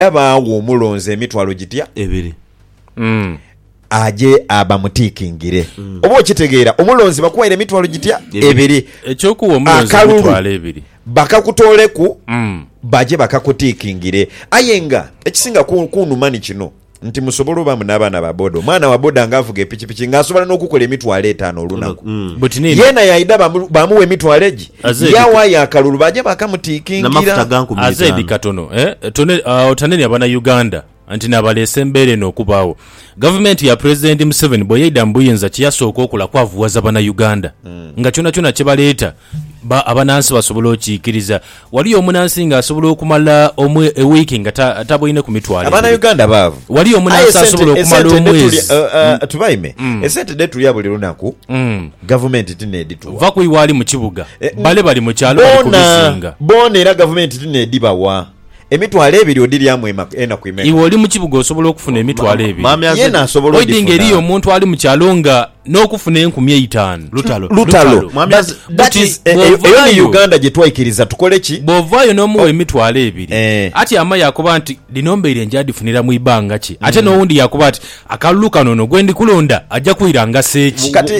era baagha omulonzi emitwalo gitya? Ebiri. Mm. Aje abamutiikingire. Oba okitegeera? Omulonzi bakuwaire emitwalo gitya? Ebiri. Eky'okuwa omulonzi Akalulu. emitwalo ebiri. Bakakutooleku, Mm. baje bakakutiikingire. Aye nga ekisinga ku- kunuma ni kino nti musobola obaamu n'abaana ba boda. Omwana wa boda nga avuga epikipiki nga asobola n'okukola emitwalo etaano olunaku. Mm. Buti nini? Yeena yaidha bamu- bamuwa emitwalo egi? Yawayo akalulu baaja baakamutiikingira. Aze edhi katono otanenia bana Uganda nti n'abaleese embeera eno okubaagho. Gavumenti ya Pulezidenti Museveni bwe yaidha mu buyinza kye yasooka okola kwavughaza bana Uganda nga kyonakyona kye baleeta abanansi basobola okiikiriza. Waliyo omunansi nga asobola okumala wiiki nga taboineku mitwalo ebiri. Waliyo omunansi asobola okumala omwezi. Gavumenti ti n'edituwa. Va ku iwe ali mu kibuga, bale bali mu kyalo bali ku bizinga. Boona era Gavumenti ti n'edhibawa. Emitwalo ebiri odhiryamu enaku imeka? Iwe oli mu kibuga osobola okufuna emitwalo ebiri. Yeena asobola odhifuna? Oidhi nga eriyo omuntu ali mu kyalo nga n'okufuna enkumi eitaanu. Lutalo. Lutalo. But eyo ni Uganda gye twaikiriza tukole ki? Bw'ovaayo n'omugha emitwalo ebiri, ati ama yaakoba nti, dhino mbaire nja dhifunira mu ibanga ki? Ate n'owundi yaakoba ati, Akalulu kano ono gwendi kulonda aja kwira ngase ki? Kati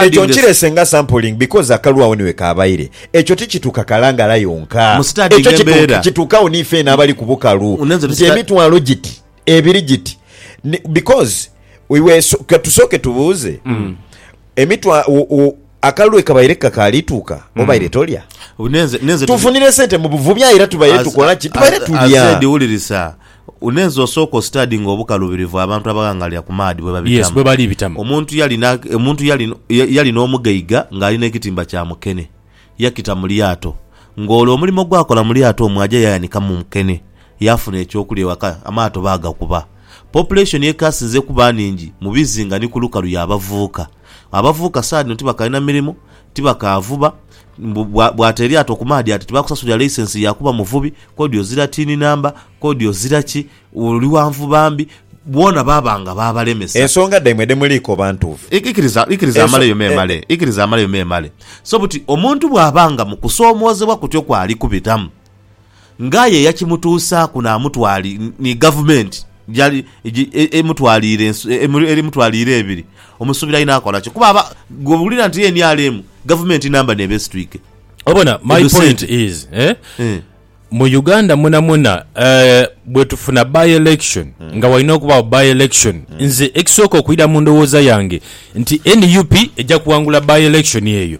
ekyo nkirese nga sampling because akalulu agho ni wekabaire. Ekyo tikituka kalangala yonka. Ekyo kituka kituka gho ni feena abali ku bukalu nti emitwalo giti, ebiri giti because iwe katusooke tubuuze emitwa akalulu wekabaire kakaali tuuka obaire tolya? Tufunire sente mu buvubi aye era tubaire tukola ki? Tubaire tulya. Unenze osooke ositadinge obukalubirivu abantu abaghangalira ku maadhi bwe Yes, babitamu. bwe bali bitamu. Omuntu yali na, omuntu yali, ya- yali n'omugaiga ng'ali n'ekitimba kya mukene. Yakita mu lyato. Ng'olwo omulimo gw'akola mu lyato omwo aja yayanikamu mukene. Yaafuna eky'okulya ewaka, amaato baagakuba. Population ekaasinze kuba nhingi mu bizinga ni ku lukalu y'abavuuka. Abavubuka saha dhino tibakalina mirimu, tibakaavuba, mbu bwata eryato ku maadhi ati tibakusasulira laisensi ya kuba muvubi, kodi ozira tiini namba, kodi ozira ki, oli wa nvuba mbi, boona baaba nga baabalemesa. Ensonga dhaimwe dhe muliikoba ntuufu? Ikiriza, ikiriza amaleyo memale, ikiriza amaleyo memale. So buti omuntu bw'aba nga mu kusoomoozebwa kutyo kw'ali kubitamu. ng'aye eyakimutuusaaku naamutwali ni gavumenti gyali emutwaliire emutwaliire ebiri, omusuubira inho akola ki? Kuba aba bw'owulira nti nrm gavumenti namba n'eba esitwike. Obona, my Edho point sente. is eh, Eh. mu Uganda mwonamwona eh, bwe tufuna by election nga walina okubaawo by election, nze ekisooka okwira mu ndowooza yange nti nup eja kuwangula by election eyo.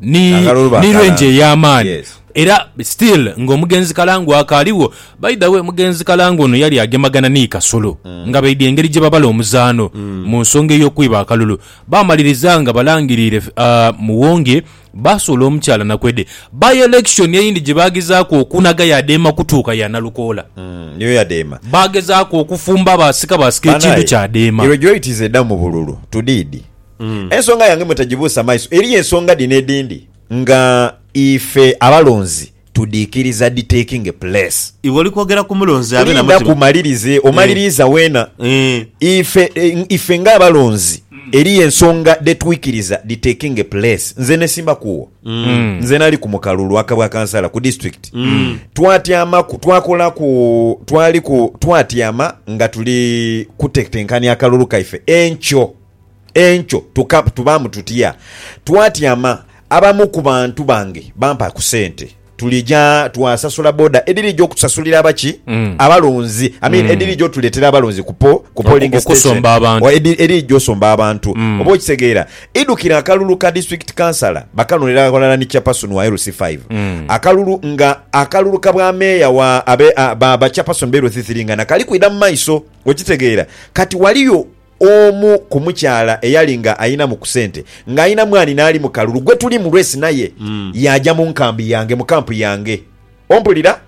ni, ni range ey'amaani era still nga omugenzi Kalangu akaaligho. By the way, omugenzi Kalangu ono yali agemagana ni Kasolo mm. nga baidha engeri gye babala omuzaano mm. mu nsonga ey'okwiba akalulu. Baamaliriza nga balangiriire uh, Muwonge baasuula omukyala Nakwede. By election eyindi gye baagezaaku okunaga yadeema kutuuka ya Nalukoola. Mm, niyo yadeema. Baagezaaku okufumba baasika baasika ekintu kyadeema. Irregularity z'edda mu bululu. Tudiidi. Ensonga yange mwe tagibuusa maiso. Eriyo ensonga dhino edhindi nga ife abalonzi tudhiikiriza dhi taking place. Iwe oli kwogera ku mulonzi abe na mutima. Lindaku malirize, omaliriiza weena. Ife, ife nga abalonzi eriyo ensonga dhe twikiriza dhi taking place. Nze nesimba kuwo. Nze nali ku mukalulu aka bwa kansala ku disitulikiti. Twatyama, twakola ku, twali ku, twatyama nga tuli kutetenkania akalulu kaife enkyo. Enkyo tukab tubaamu tutya? Twatyama, abamu ku bantu bange bampa ku sente tulija twasasula boda edhirija okutusasulira abaki abalonzi I mean edhirija otuleetera abalonzi ku po ku polling Oku- station okusomba abantu. Oba edhi- edhirija osomba abantu oba okitegeera idhukira akalulu ka district councillor bakanonera aghalala ni chairperson wa LC 5 akalulu nga akalulu ka bwa meeya wa abe a- ba ba chairperson be LC 3 nga nakali kwidha mu maiso okitegeera kati waliyo Omu ku mukyala eyali nga ayinamu ku sente nga ayina mwani naali mu kalulu gwetuli mu lwesi naye yaaja mu nkambi yange, mu kampu yange. Ompulira?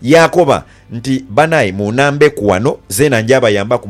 Yaakoba nti, Banae, muunambeku wano, zeena njabayambaku.